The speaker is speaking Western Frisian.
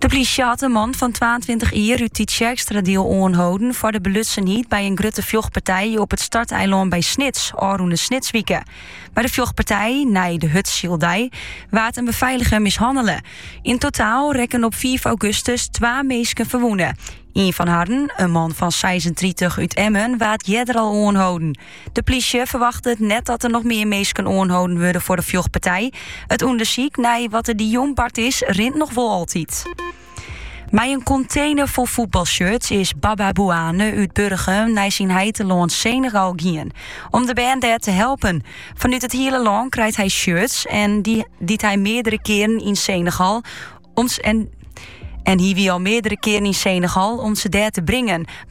De plysje hat in man fan 22 jier út Tytsjerkstradiel oanholden foar de belutsenheid by in grutte fjochtpartij op it starteilân by Snits ôfrûne Snitswike. By de fjochtpartij, nei de hurdsyldei, waard in beveiliger mishannele. Yn totaal rekken op 5 augustus twa minsken ferwûne. Ien fan harren, in man fan 36 út Emmen, waard earder al oanholden. De plysje ferwachtet net dat der noch mear minsken oanholden wurde foar de fjochtpartij. It ûndersyk nei wat der dy jûn bard is, rint noch wol altyd. Mei in kontener fol footbalshirts is Baba Bouane út Burgum nei syn heitelân Senegal gien. Om de bern dêr te helpen. Fanút it hiele lân krijt hij shirts en dy't hy en hy wie al meardere keren yn Senegal om ze dêr te bringen.